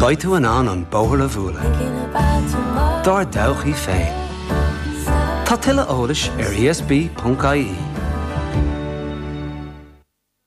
Beidh tú in ann an bóthar a bhualadh dár dtodhchaí féin. Tá tuilleadh eolais ar ESB.ie.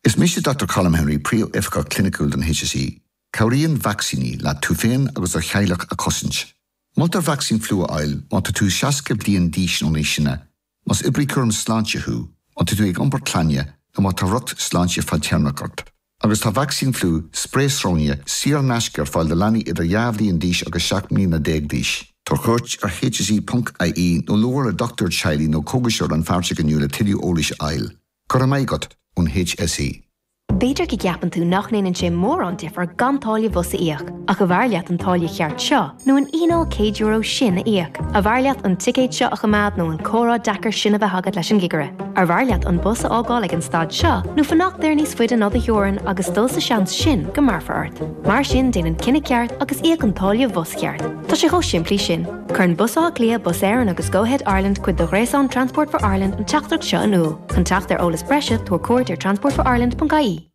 Is mise Dr Colm Henry, Príomhoifigeach Cliniciúil don HSE. Cabhraíonn vacsaíní leat tú féin agus do theaghlach a chosaint. Moltar vacsaín fliú a fháil má tá tú 60 bliain d'aois nó níos sine, Más oibrí cúram sláinte thú, má tá tú ag iompar clainne nó má tá riocht sláinte fadtéarmach ort, agus tá vacsaín fliú, sprae sróine, saor in aisce ar fáil do leanaí idir dhá bhliain d'aois agus seacht mbliana déag d'aois, tabhair cuairt ar hse ponc ie nó labhair le dochtúir teaghlaigh nó cógaiseoir rannpháirteach inniu le tuilleadh eolais a fháil. Go raibh maith agat, ón hse. B'fhéidir go gceapann tú nach ndéanann sé mórán difir gan táille bhus a íoc, ach arbh fhearr leat an táille cheart seo nó an fhíneáil €100 sin a íoc? Arbh fhearr leat an ticéad seo a choimeád nó an comhrá deacair sin a bheith agat leis an gcigire? Arbh fhearr leat an bus a fhágáil ag an stad seo nó fanacht air níos faide ná do theorainn agus dul sa seans sin go mbéarfar ort? Mar sin déan an cinneadh ceart agus íoc an táille bhus cheart. Tá sé chomh simplí sin. Cuireann Bus Átha Cliath, Bus Éireann agus Go-Ahead Ireland cuid de ghréasán Transport for Ireland an teachtaireacht seo in iúl. Chun teacht ar eolas breise, tabhair cuairt ar transportforireland.ie.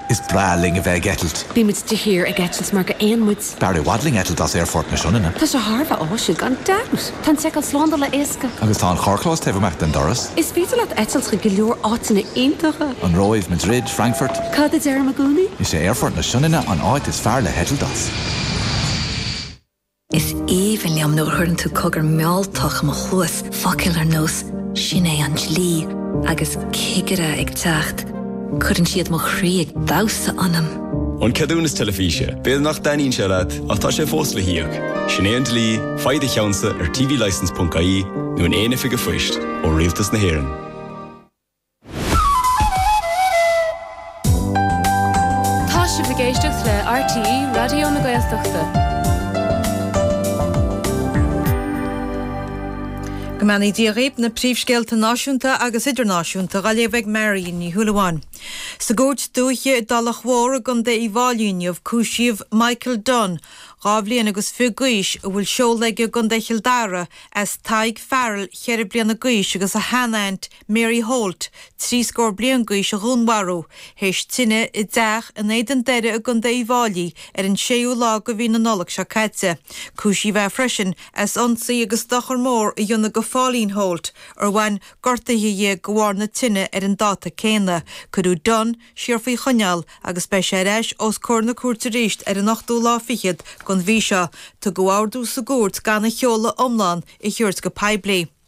Is breá linn a bheith ag eitilt. Bíonn muid de shíor ag eitilt mar géanna muid. B'fhearr i bhfad linn eitilt as Aerfort na Sionainne. Tá sé thar a bheith áisiúil, gan dabht! Tá an tseiceáil slándála éasca. Agus tá an carrchlós taobh amach den doras. Is féidir leat eitilt chuig go leor áiteanna iontacha. An Róimh, Madrid, Frankfurt. Cad a deirim i gcónaí? Is é Aerfort na Sionainne an áit is fearr le heitilt as. Is aoibhinn liom nuair a chuireann tú cogar mealltach i mo chluas, focail ar nós 'Sin é an dlí' agus 'cigire ag teacht', cuireann siad mo chroí ag damhsa ionam! An ceadúnas teilifíse, b'fhéidir nach dtaitníonn sé leat ach tá sé fós le híoc. Sin é an dlí, faigh do cheannsa ar tvlicense.ie nó in aon oifig an phoist ó Rialtas na hÉireann. Tá sibh ag éisteacht le RTÉ Raidió na Gaeltachta. Go mbeannaí Dia dhaoibh, na príomhscéalta náisiúnta agus idirnáisiúnta á léamh ag Marion Ní Shúilleabháin. Sa gCúirt Dúiche i dTulach Mhór i gContae Uíbh Fháilí inniu cúisíodh Michael Dunne, dhá bhliain agus fiche d'aois, a bhfuil seoladh aige i gContae Chill Dara as Tadhg Farrell, cheithre bliana d'aois, agus a sheanaint Mary Holt, trí scór bliain gaois a dhúnmharú, théis tine i dteach in Éadan Doire i gContae Uíbh Fháilí ar an 6ú lá de mhí na Nollag seo caite. Cúisíodh é freisin as ionsaí agus dochar mór a dhéanamh go Phauline Holt, ar bhain gortuithe di de bharr na tine ar an dáta céanna. Cuireadh Dunne siar faoi choinneáil agus beidh sé ar ais os comhair na cúirte arís ar an ochtú lá fichead den mhí seo. Tugadh ordú sa gcúirt gan a sheoladh iomlán a thabhairt go poiblí.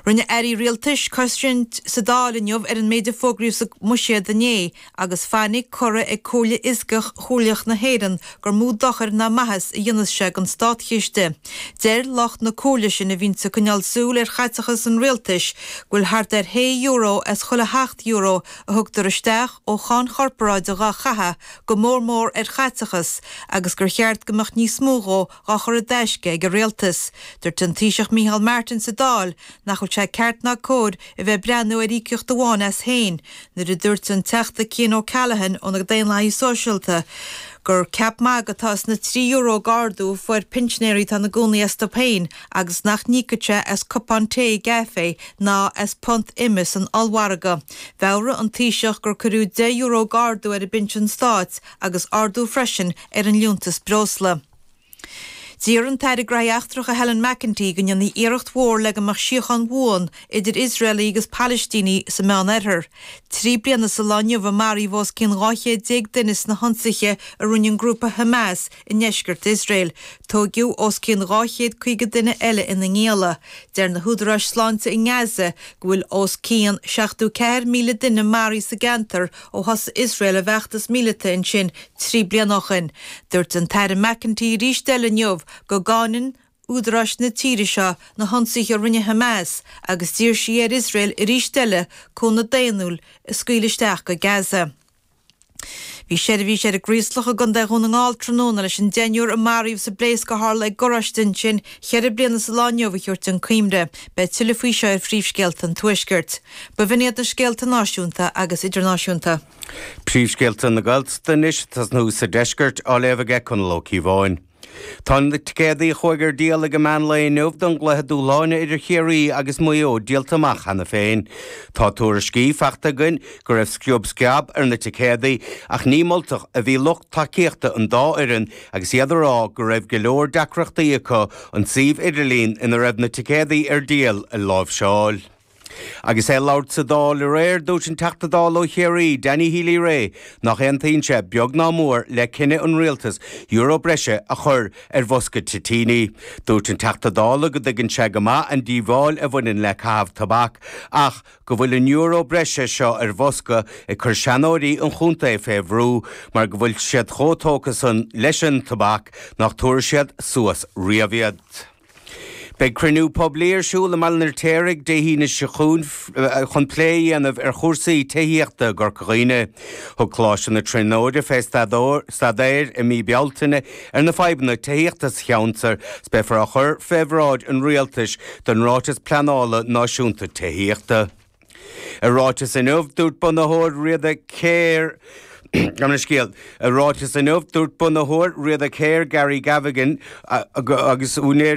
Rinne airí rialtais cosaint sa Dáil inniu ar an méid a fógraíodh sa mBuiséad inné agus fainic curtha ag Comhairle Fhioscach Chomhairleach na hÉireann gur mó dochair ná maitheas a dhéanfas sé don státchiste. Deir lucht na Comhairle sin a bhíonn ag coinneáil súil ar chaiteachas an rialtais go bhfuil thart ar shé euro as chuile sheacht euro a thugtar isteach ó cháin chorparáide dhá caitheadh go mór mór ar chaiteachas agus gur cheart go mbeadh níos mó dhe dhá chur i dtaisce ag an Rialtas. Dúirt an Taoiseach Micheál Martin sa Dáil nach bhfuil sé ceart ná cóir a bheith ag breathnú ar íocaíocht amháin as féin nuair a dúirt an Teachta Cian O'Callaghan ó na Daonlathaithe Sóisialta gur ceap magaidh atá sna trí euro d'ardú a fuair pinsinéirí atá ina gcónaí astu féin agus nach n-íocfaidh sé as cupán tae i gcaifé ná as punt ime san ollmhargadh. Mheabhraigh an Taoiseach gur cuireadh deich euro d'ardú ar an bpinsean stáit agus ardú freisin ar an liúntas breosla. D'iarr an tAire Gnóthaí Eachtracha Helen McEntee go ndéanfaí iarracht mhór le go mbeadh síocháin bhuan idir Iosraelaigh agus Palaistínigh sa Meán Oirthear. Trí bliana sa lá inniu a maraíodh os cionn 12 chéad duine sna hionsaithe a rinne an grúpa Hamas i ndeisceart Iosrael. Tóigeadh os cionn 250 duine eile ina ngialla. Deir na húdaráis sláinte i nGaza go bhfuil os cionn 74,000 duine maraithe sa gceantar ó thosaigh Iosrael a bhfeachtas míleata ansin trí bliana ó shin. Dúirt an tAire McEntee arís eile inniu go gcáineann údaráis na tíre seo na hionsaithe a rinne Hamas agus d'iarr sí ar Iosrael arís eile cúnamh daonnúil a scaoileadh isteach go Gaza. Bhí seirbhís ar an gCraoslach i gContae Dhún na nGall tráthnóna leis an deichniúr a maraíodh sa bpléasc a tharla ag garáiste ansin cheithre bliana sa lá inniu a thabhairt chun cuimhne. Beidh tuilleadh faoi seo ar Phríomhscéalta an Tuaiscirt. B'in iad na scéalta náisiúnta agus idirnáisiúnta. Príomhscéalta na Gaeltachta anois ag tosnú sa deisceart, á léamh aige Conall Ó Cíobháin. Tá na ticéadaí a chuaigh ar díol ag an meán lae inniu don gcluiche dúshláine idir Ciarraí agus Maigh Eo díolta amach cheana féin. Tá tuairiscí faighte againn go raibh sciob sceab ar na ticéadaí ach ní moltach a bhí lucht tacaíochta an dá fhoireann agus iad ag rá go raibh go leor deacrachtaí acu an suíomh idirlín ina raibh na ticéadaí ar díol a láimhseáil. Agus é ag labhairt sa Dáil aréir, dúirt an Teachta Dála ó Chiarraí, Danny Healy Rae, nach aontaíonn sé, beag ná mór, le cinneadh an Rialtais euro breise a chur ar bhosca toitíní. Dúirt an Teachta Dála go dtuigeann sé go maith an díobháil a bhaineann le caitheamh tobac ach go bhfuil an euro breise seo ar bhosca ag cur seanóirí an chontae fé bhrú mar go bhfuil siad chomh tógtha san leis an tobac nach dtabharfaidh siad suas riamh iad. Beidh cruinniú poiblí ar siúl i mBaile an Fheirtéaraigh Dé hAoine seo chugainn chun plé a dhéanamh ar chúrsaí tithíochta i gCorca Dhuibhne. Thug Coláiste na Tríonóide fé staidéar i mí Bealtaine ar na fadhbanna tithíochta sa cheantar is beifear á chur fé bhráid an Rialtais don Ráiteas Pleanála Náisiúnta Tithíochta. I ráiteas inniu, dúirt bunaitheoir Riada Care, I ráiteas inniu, dúirt bunaitheoir Riada Care, Gary Gavigan, agus úinéirí,